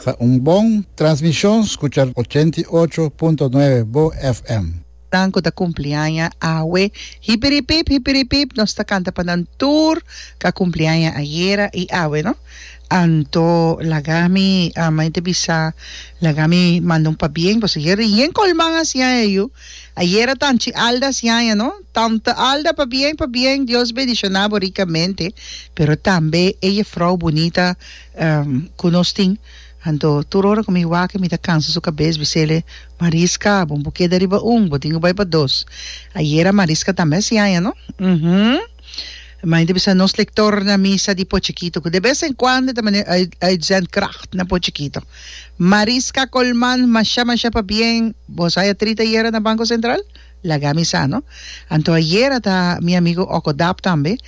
Ta un bon transmishon skucha ochenta i ocho punto nuebe bo FM. Nan ku ta kumpliaña awe, hipiripip hipiripip nos ta kanta pa nan tur ku a kumpliaña ayera i awe no. Anto laga mi, mei ta bisa laga mi manda un pabien ku asejer rien kolman a siña e yu. Ayera tanchi alda siaña no tanta alda pabien pabien Dios bendiciona bo ricamente pero tambe e jefrouw bunita cu nos tin anto tur ora cu mi wak mi ta cansa su cabez mi sele Marisca bo no por keda riba un bo tin cu bay pa dos ayera Marisca tambe a siaña no. Main ta bisa nos lector na misa di Pochekito cu de vez en cuando ta mane uitzendkracht na Pochekito. Mariska Colman, masha masha pa bien, bo sa ya trita yera na Banco Central? Laga mi sa no. Anto ayera ta mi amigo Oko Dap tambe,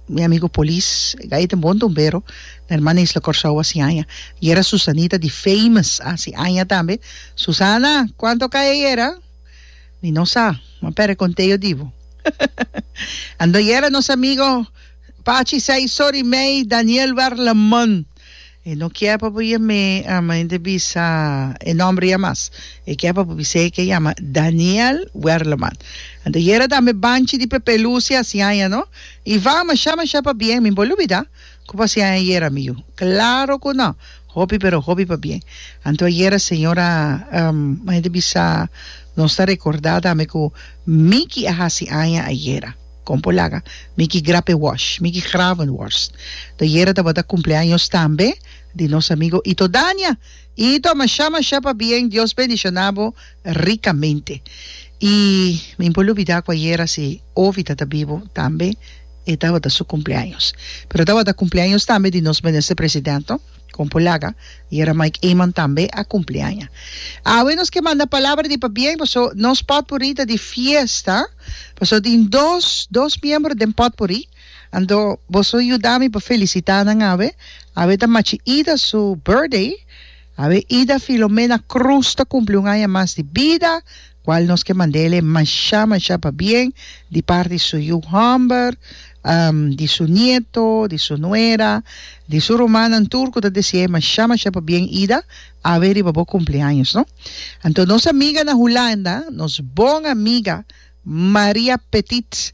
mi amigo polis, gai ta bon tumbero na hermana Isla Corsou a si aña. Yera Susanita di Famous a si aña tambe. Susana, cuanto cay ayera? Mi no sa, ma pere conte yo di bo. Ando yera nos amigo Pachi say sorry mey Daniel Warleman. E no kier pa bo yam'e a mente bisa e nomber ya mas. E kier pa bo bis'e ke yama Daniel Werleman. Ando yera tambe Banchi di Pepe Lucia, siaña no. Ivan, masha masha pa bien, mi bo lubida. Cu pasian ayer amigo? Claro cu no! Hopi pero hopi pa bien. Anto ayer a señora Maite bisa nos ta recorda tambe cu Micky a haci aña ayer. Con por laga? Micky Grape Wash, Micky Gravenworst. Anto ayer tabata cumpleaños tambe di nos amigo Ito Dania. Ito, masha masha pa bien, Dios bendicionabo. ricamente. Y mi por lubida cu ayera si Ovi tata bibo tambe e tabata su cumpleaños. Pero tabata cumpleaños tambe di nos Minister President no, con por laga ayera Mike Eman tambe a cumpli aña. Awe nos ke manda palabra di pabien paso nos potpourri ta di fiesta, paso tin dos dos miembro den potpourri, anto boso yuda mi pa felicita nan awe, awe ta machi Ida su birthday, Awe Ida Filomena Cruz ta cumpli un aña mas di bida, cual nos ke mandele masha masha pabien di parti di su yu Humber, di su nieto, di su nuera, di su rumannan tur cu ta desiae masha masha pabien Ida, awe riba bo cumpleaños no. Anto nos amiga na Hulanda, nos bon amiga Maria Petit,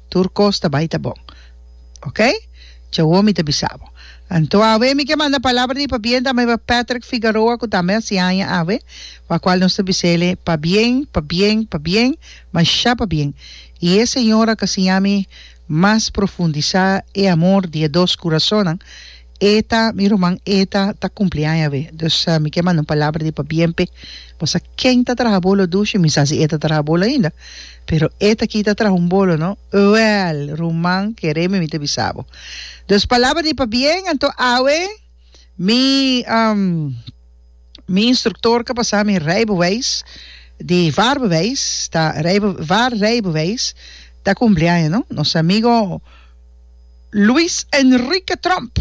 Tur kos ta bai ta bon. Ok. Djawo mi ta bisa bo. Anto awe mi ke manda palabra di pabien ta meba Patrick Figaroa ku tambe a si aña awe, pa kual nos ta bisa ele pabien, pabien, pabien, masha pabien. I e señor a ka siña mi mas profundisá e amor di e dos kurasonnan Eta, mi ruman Eta ta kumpliaña awe, dus mi ke manda un palabra di pabiempe, bo sa ken ta traha bolo dushi? Mi sa si e ta traha bolo ainda, pero e ta kita traha un bolo no? Wèl, ruman, keré mi mi ta bisa bo. Dus palabra di pabien, anto awe mi mi instruktor ka pasa mi rijbewijs di vaarbewijs ta rijbe vaarrijbewijs ta kumpliaña no, nos amigo. Luis Enrique Trump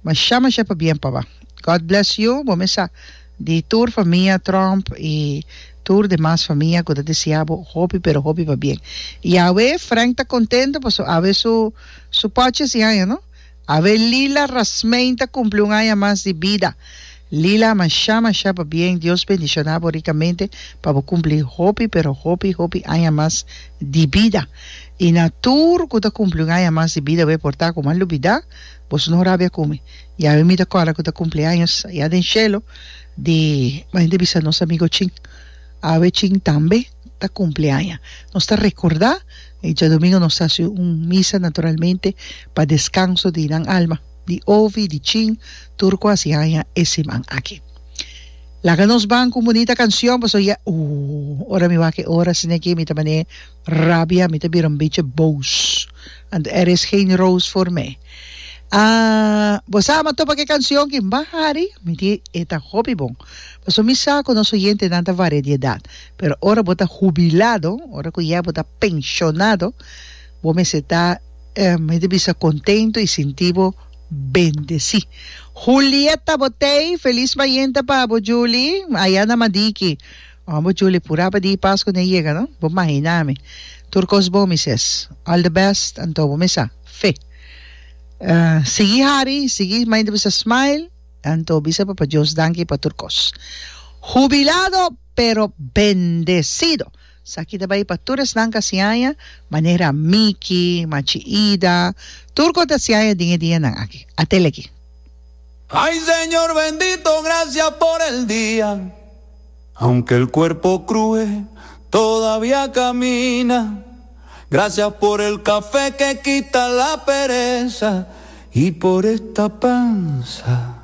masha masha pabien paba God bless you bo mesa di tur famia Trump y tur demas famia ku ta desia bo hopi pero hopi pabien y awe Frank ta contento paso awe su su pochi si aña no awe Lila Rasmein ta cumpli un aña mas di bida Lila masha masha pa bien Dios bendiciona bo ricamente pa bo cumpli hopi pero hopi hopi aña mas di bida y na tur cu ta cumpli un aña mas di bida bo a porta como a lubida boso no rabia cu mi yawe mi ta cola cu ta cumpli años allá den cielo di bo a bisa nos amigo chin awe chin tambe ta cumpli aña nos ta recorda y diadomingo nos ta haci un misa naturalmente pa descanso di nan alma. di ofi, di chin, tur cu hasi haña e siman aki. Laga nos ban cu un bunita cancion pasobra ya ooh, ora mi wak e ora sina aquí mi ta mane rabia, mi ta bira un bichi boos, anto er is geen roos voor mij. Aah, bo sa ama topa cu e cancion aki? Mba Harry, mi di e ta hopi bon, pasobra mi sa cu nos oyentenan ta varia di edad, pero ora bo ta hubilado, ora cu ya bo ta pensionado, Bo mester ta, mi ta bisa, contento y sinti bo bendeci. Julieta Botey, Feliz Bayente pa bo Julie, aya na Madiki. Oh, bo Julie, pura pa di Pascu ne yega, no? Bo mahina mi. Tur cos bon, mi ses. All the best, anto bo mester a fe. Sigui hari, sigui, mayen ta bisa smile, anto bisa Papa Dios danki pa tur cos. Jubilado pero bendecido. Saki ta bai pa tur esnan ka siaña, manera Miki, Machi Ida, tur ku a ta siaña den e dianan aki. A tele aki. Ay Señor bendito gracia por el dia Aunque el cuerpo crue todavia camina Gracias por el café que quita la pereza Y por esta panza